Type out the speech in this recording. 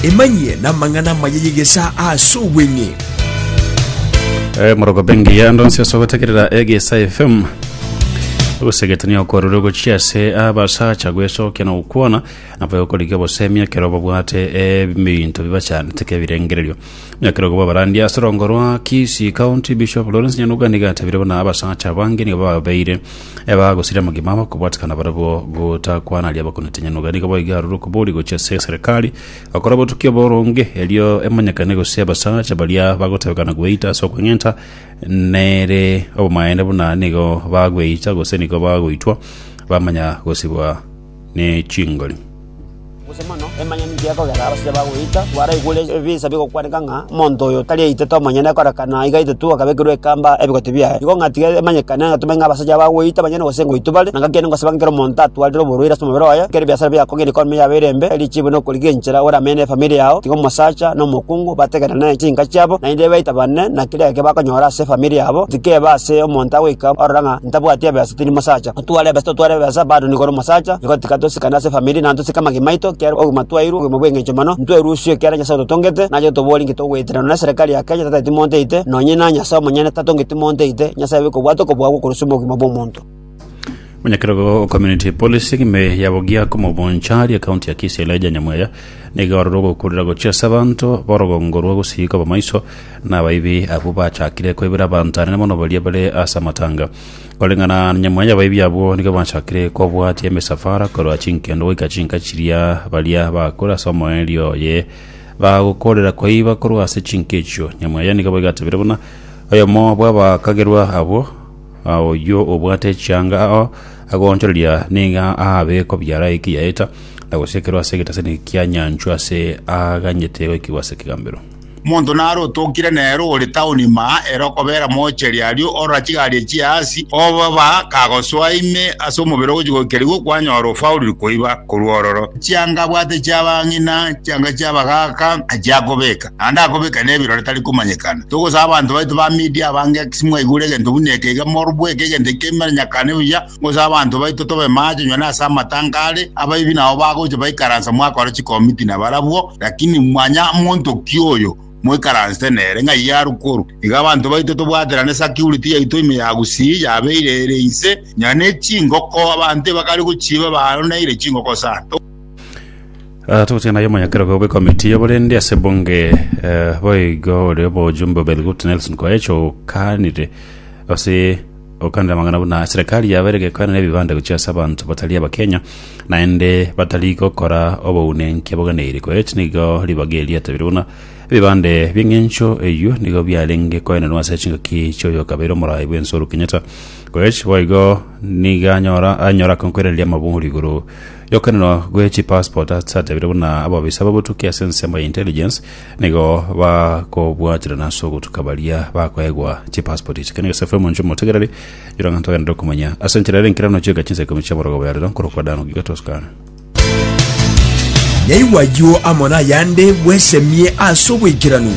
Emanyie namang'ana amaya y'egesaa ase obweng'e. Eh, moroko bengi ya ndonsi ase ogotekerera egesa fm ogosegetania okwarure gochia ase abasacha gwesokia na gokwana nabo yokorika obosemi ekero babwate ebinto bibachanete ke birengererio ekero goba barandi ase rongo rwa Kisii County Bishop Lawrence Nyanuga niga atabire buna abasacha bange nigo babeire Ebagosire amagima abo kobwatikana barabwo gotakwana aria bakonetenya noga nigo boiga aroro kobori gochia ase eserekari gokora obotuki oboronge erio emonyekane gose abasacha baria bagotebekana gweita ase okweng'enta nere obomaene buna nigo bagweita gose nigo bagoitwa bamanya gosibwa ne chingori. Gose mono emanyene inki gekogera abasibwa bagoita, baraigure ebisa bigokwaneka ng'a omonto oyo tari aitete omonyene koreka na iga aitetu akabekerwa ekamba ebigote biaye. Igo ng'a tiga emanyekane ng'a tomenye ng'a abasacha aba bagoita banyene gose ngoitwa bare, na gaki ningosaba ng'a kera omonto atwarire oborwaire ase omobere oye, ekero ebiasara biago kogenda economy yabo ere embe, erichibu na okorigenchera ore amenye ne efamiri yao, tiga omosacha na omokungu bategerane chinka chiabo, naende baitabane na keria geke bakonyora ase efamiri yabo, tikeba ase omonto agoika orora ng'a ntabwati ebesa tindi mosacha. Twarebe ase totwarebe ase abanto nigo ore omosacha, nigo tika tosikane ase efamiri na ntosike amagima aito, ekiagera obogima twairwe obogima bw'engencho mono, ntwerusie ekiagera Nyasae ototongete, na aye tobori inki togoetererana na eserekari ya Kenya tataeti monto ite, nonye na Nyasae omonyene tatongeti monto ite, Nyasae obe kobwata okobua gwe korosio obogima bw'omonto. Omonyakerogo o Community Policy egime ya bogia komobonchari ekaunti ya Kisii Elijah Nyamweya nigo arorire ogokurera gochia ase abanto borogongo rwa gusii koba maiso nabaibi abwo bachakire koibera abanto anene mono baria bare ase amatanga Koreng'ana na nyamwe y'abaibi abwo nigo bachakire kobwatia emisafara korwa chinkendo goika chinka chiria baria bagakora ase omoerio oye bagokorera koiba korwa ase chinka echio. Nyamwe eye nigo baigatebire buna oyomo bw'abakagerwa abwo, "Ah, oyio obwate echianga ao agoonchoreria niga aabe kobiara ekiyaeta, na gosiekerwa ase egetesani kia nyanchwa ase aaganyete goikigwa ase ekegambero. Omonto nare otokire nere ore taoni ime aa ere okobera moocheri aria orora chigari echio aase, oboba kagosoa ime ase omobere ogochia goikerigwa kwanyora ofauriri koiba korwa ororo. Chianga abwate chi'abang'ina, chianga chi'abagaaka achia akobeka, naende akobeka nebirore tari komanyekana. Togosaba abanto baito ba Media abange, ase mwaigure egento buna eke iga morobweke egento ekio emeranyakane buya, Gose abanto baito tobe maache onye nase amatango are, abaibi nabo bagocha baikaransa mwakora chikomiti nabarabwo, lakini manya monto ki oyo moikaransete nere, ng'ai yarwa korwa. Iga abanto baito tobwaterane security yaito ime ya gusii yabeire ere inse, nonya ne chingoko abanto ebakare gochiba baroneire chingoko sana. Ah, togochika naye omonyakerogo bw'ekomiti ya oborende ase ebunge eh, boigo ore obojumbe Obed Gut Nelson Koech okanire ase Gokanera amang'ana buna serikali yabeire gekoenera ebibande gochia ase abanto batari Abakenya, naende batari gokora obounenki aboganeiri. Koet nigo ribaga erio yatabire buna, Ebibande bi'eng'encho eyio nigo biarenge koenerwa ase chingaki chi'oyokabeire omorai bw'ense Uhuru Kenyatta. Koech boigo nigo anyora anyora akonkwerereria amabori igoro yokoenerwa gwe chipassport ase atabire buna ababisa babotuki ase ensemo ya intelligence Nigo bakobwaterana ase ogotuka baria bakoegwa chipaspoti echi. Kenya Gese FM inche omotegereri, yora ng'a ntogende ndokumanya. Ase enchera ere enkerano chieka chinsa ikomi chia borogoba ya rero, nkorokwa Dan Ogiga Toscano. Nyaigwa ayio amo nayande bwesemie ase oboikeranu.